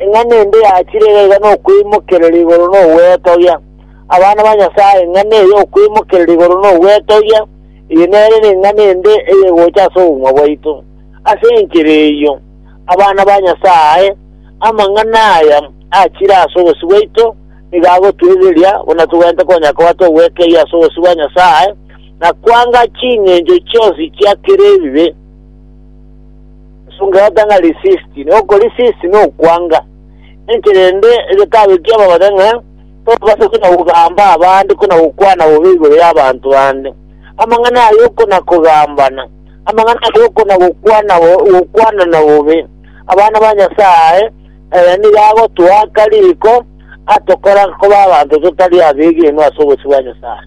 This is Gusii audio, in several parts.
Ng'a nende yachire egaiga nokweimokereria igoro nogwetogia abana ba Nyasae, ng'a neye okwimokereria igoro nogwetogia, eye nere neng'a nende eyegocha ase obogima bwaito. Ase enchera eyio, abana ba Nyasae, amang'ana aya achire ase obosio bwaito nigo agotoirireria buna togwenerete konya koba togwekeria ase obosio bwa Nyasae na kwanga ching'encho chionsi chia kera ebibe. Esung'erata ng'a risisti, na okorisisti nokwanga. Inche rende egekabekia babare ng'a tobasa buna gogamba abande kona gokwana bobe igoro y'abanto bande. Amang'ana ayio kona kogambana, amang'ana ayio kona gokwana gokwanana bobe, abana ba Nyasaye aya nigo agotoaka riko atokora koba abanto totari abegenwa ase obosio bwa Nyasaye.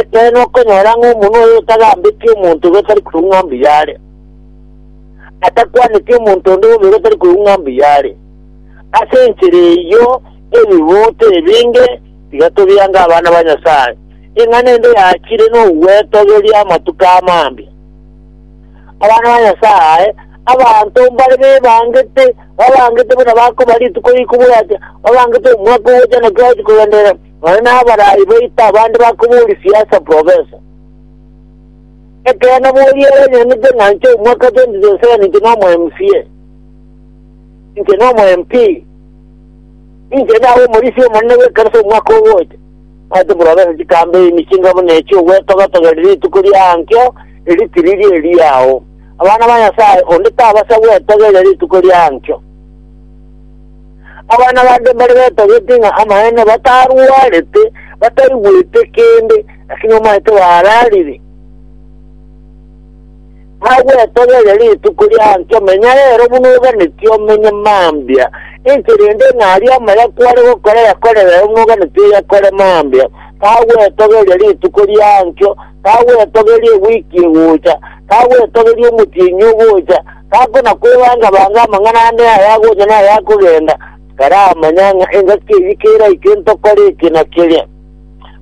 Ekeene okonyora ng'a omonwa oyo otagambeti omonto gotari koigwa ng'a mbuya are, atakwaneti omonto onde bobe gotari koigwa ng'a mbuya are. Ase enchera eyio ebibuuto ebinge tiga tobiange abana ba Nyasae, ng'a nende yachire nogwetogeria amatuko amambia. Abana ba Nyasae, abanto mbare bebangete, babangete buna bakoba rituko rikobwatwa, babangete omwaka ogocha naki bagochi kogenderera, Nonye n'abarai baito abande bakobooria siasa profesa. Ekeene boria ere enyanete ng'a inche omwaka 2027 inche nomo MCA. Inche nomo MP. Inche ndabe omorisia omonene bw'ekanisa omwaka ogocha. Omanyete profesa chikambe ime chinga buna echi ogwetogatogera rituko riankio riri tiriri eriao. Abana ba Nyasaye onde tabasa gwetogeria rituko riankio. Abana bande mbare betogete ng'a amaene batarwarete, bataigwete kende, lakini omanyete bararire. Nagwetogeria rituko rianchio, menya rero buna oganeti omenye mambia. Inche rende ng'a aria amaya kware gokora yakore rero buna oganeti oyakore mambia. Tagwetogeria rituko rianchio, tagwetogeria ewiki egocha, tagwetogeria omotienyi ogocha, Gakona kwebanga-banga amang'ana ande ay'agocha na ay'akogenda, karamanya ng'a engaki eyio keraike ntokore eke na keria.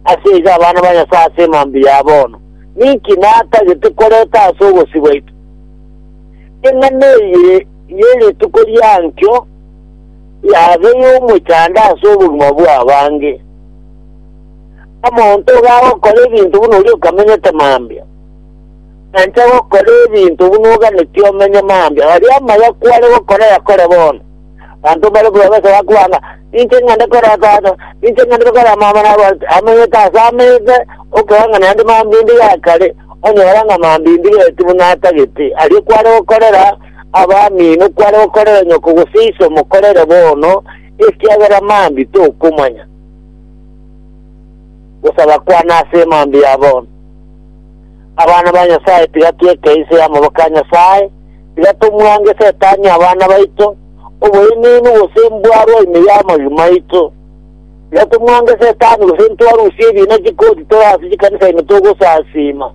Ase igo abana ba Nyasae ase emambia ya bono, ninki natagete koreta ase obosio bwaito? Eng'ana eye ye rituko ria nkio yabe y'omochando ase obogima bw'abange. Omonto igo agokora ebinto buna oria okamenyete mambia. Nanche gokora ebinto buna oganetie omenye mambia, aria amaya kware gokora yakore bono. Abanto mbare kobabesa bakobaa ng'a, Ninche ng'ende kora tata, ninche ng'ende kora mama, nabo ase amanyete ase amete, okeba ng'a naende mambia inde ya kare, onyora ng'a mambia inde gati buna atagete. Aria kware gokorera abamino, kware gokorera nyoko gose iso mokorere bono, ekiagera mambia tokomanya gosaba kwane ase mambia ya bono. Abana ba Nyasae, tiga tweke inse y'amaboko a Nyasae, tiga tomwange Setani abana baito, oboenenu gose mbwarwa ime y'amagigi maito. Tiga tomwange Setani gose ntwarusie ebiina chikoti tore ase chikanisa ime togosasiima.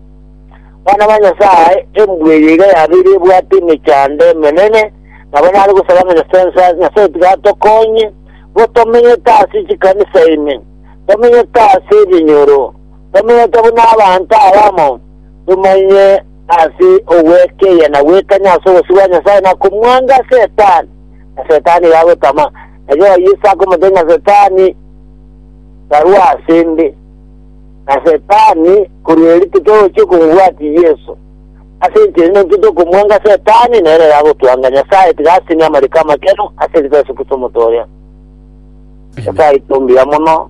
Bana ba Nyasae, embwa eye iga yabeire ebwate emechando emenene, nabo nare gosaba ng'a Nyasae Nyasae Nyasae tiga atokonye, bo tomenyete ase chikanisa ime, tomenyete ase ebinyoro, Tomenyete buna abanto abamo, tomanyie ase ogwekeyia na gwekanya ase obosio bwa Nyasae na komwanga Setani. Na Setani iga agotama, na Jehova Yeso akomotebia ng'a Setani, Karua ase 'nde. Na Setani korwa erio titogochia komobwatia Yeso. Ase enchera ende intwe tokomwanga Setani, na ere iga agotwanga. Nyasae tiga asinye amariko amakeenu ase rituko riaye Yeso Kristo omotoria. Nyasae aito mbuya mono.